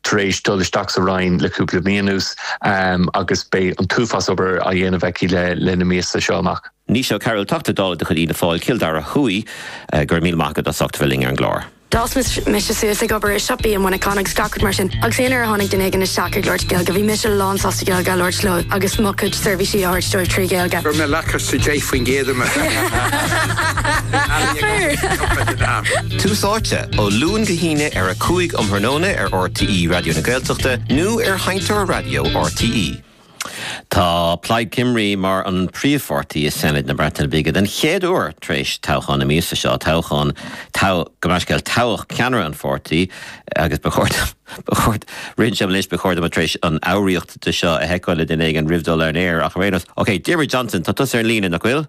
tar éis dul isteach sa Roinn le cúpla mí anuas agus beidh an t-uafás obair á dhéanamh aici le na míosa seo amach. Naoise Ó Cearúil, Teachta Dála de chuid Fhianna Fáil, Cill Dara Thuaidh. Go raibh míle maith agat as ucht a bheith linn ar an gclár. D'fhás mise suas ag obair i siopaí i Muineachán agus gach rud mar sin agus aon uair a tháinig duine éigin isteach ag labhairt Gaeilge bhí mise lán sásta Gaeilge a labhairt leo agus mo chuid seirbhísí a thabhairt dóibh trí Ghaeilge. Raibh mé lacus sa 10% de mo shaol. Tús Áite, ó Luan go hAoine ar a 5 um thráthnóna ar RTÉ Raidió na Gaeltachta nó ar sheinnteoir raidió RTÉ. Tá Plaid Cymru mar an príomhpháirtí i Seanad na Breataine Bige den chéad uair tar éis toghchán na míosa seo, toghchán, gabh mo leithscéal, toghadh ceannaire an pháirtí agus ba chóir dom a bheith tar éis an fhoghraíocht de seo a sheiceáil le duine éigin roimh dul ar an aer ach ar aon nós, OK, Diarmuid Johnson, tá tusa ar an líne, nach bhfuil?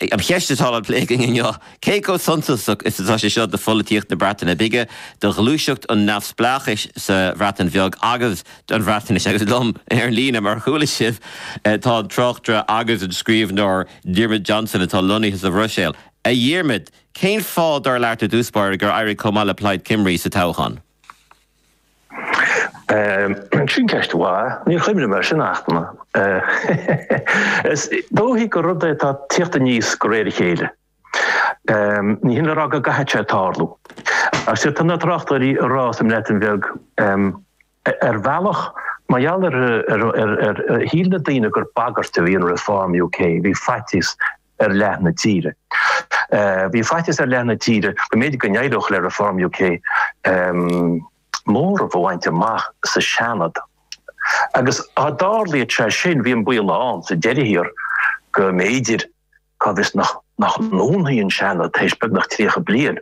An cheist atá le plé againn inniu, cé chomh suntasach is atá sé seo do pholaitíocht na Breataine Bige, do ghluaiseacht an neamhspleáchais sa Bhreatain Bheag agus don Bhreatnais? Agus liom ar an líne, mar a chuala sibh, tá an tráchtaire agus an scríbhneoir Diarmuid Johnson atá lonnaithe sa Bhruiséil. A Dhiarmaid, cén fáth, dar leat, i dtús báire, gur éirigh chomh maith le Plaid Cymru sa toghchán? Sin ceist mhaith. Níor chuimhnigh mé ar sin, ach is dóichí gur rud é atá ag tíocht aníos de réir a chéile. Ní hin le rá go gcaithfidh sé tarlú. Ach sea, tá na tráchtairí ag rá sa mBreatain Bheag, ar bhealach, mar gheall ar ar shíl na daoine gur bagairt a bhí in Reform UK, bhí faitíos ar leath na tíre. Bhí faitíos ar leath na tíre go mb'fhéidir go n-éireodh le Reform UK móramh a bhaint amach sa Seanad agus dá dtarlaíodh sé sin, bhí an baol ann sa deireadh thiar go mb'fhéidir, cá bhfios, nach ndúnfaí an Seanad tar éis beagnach 30 bliain.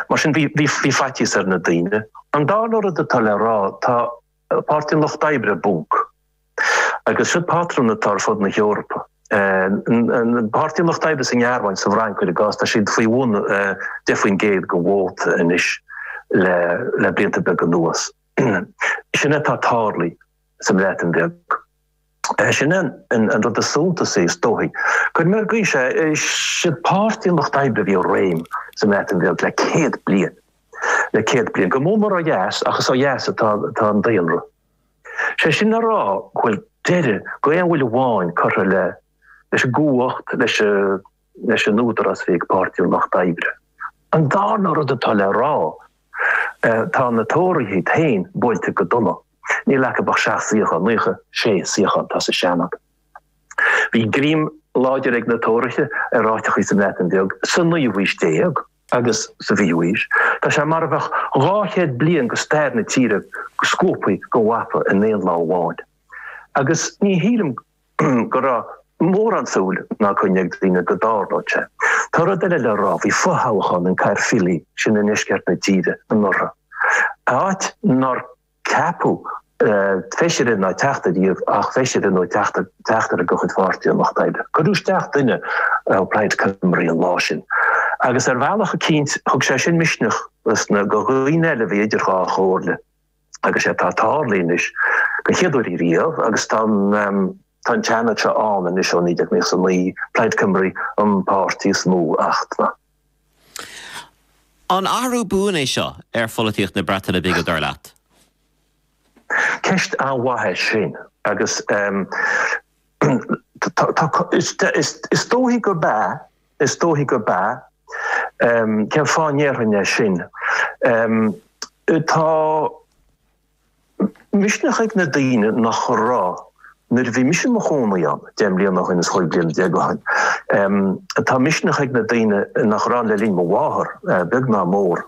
Mar sin bhí faitíos ar na daoine. An dara rud atá le rá, tá Páirtí an Lucht Oibre i bponc. Agus sin patrún atá ar fud na hEorpa. Páirtí an Lucht Oibre sa nGearmáin, sa bhFrainc, cuir i gcás, tá siad faoi bhun 10 faoin gcéad den vóta anois le blianta beaga anuas. Sin é atá ag tarlú sa mBreatain Bheag. Sin é an rud is suntasaí is dóichí. Cuir mé ar gaois é, is iad Páirtí an Lucht Oibre a bhí i réim sa mBreatain Bheag le céad bliain. Le céad bliain. Go mór mór ó dheas ach is ó dheas atá an daonra. Sé sin le rá go bhfuil deireadh d'aon bhuille amháin curtha leis an gcumhacht, leis an. leis an údarás a bhí ag Páirtí an Lucht Oibre. An darna rud atá le rá, tá na Tóraithe féin buailte go dona. Níl acu ach seacht suíochán, naocha sé suíochán atá sa Seanad. Bhí greim láidir ag na Tóraithe ar áiteachaí sa mBreatain Bheag sa naoú haois déag agus sa bhfichiú haois. Tá sé mar a bheadh dhá chéad bliain de stair na tíre scuabtha den mhapa in aon lá amháin. Agus ní shílim go. go raibh mórán súil ná coinne ag daoine go dtarlódh sé. Tá rud eile le rá. Bhí fothoghchán in Caerffili, sin i ndeisceart na tíre, anuraidh. Áit nár ceapadh feisire ná teachta riamh ach feisire nó teachtaire de chuid Pháirtí an Lucht Oibre. Cuireadh isteach duine ó Plaid Cymru an lá sin. Agus ar bhealach eicínt thug sé sin misneach do dhaoine eile a bhí idir dhá chomhairle. agus sé atá tarlaithe anois don chéad uair riamh agus tá an tá an Seanad seo ann anois ó 1999 Plaid Cymru an páirtí is mó ach tá na. An athrú buan é seo ar pholaitíocht na Breataine Bige dar leat? Ceist an-mhaith é sin agus tá tá is is is dóichí gurb ea. Is dóichí gurb ea. Cén fáth a ndéarfainn é sin? Tá misneach ag na daoine nach raibh nuair a bhí mise i mo chónaí ann deich mbliana ó shin, is chúig bliana déag ó shin. Tá misneach ag na daoine nach raibh ann le linn mo mháthar, beag ná mór.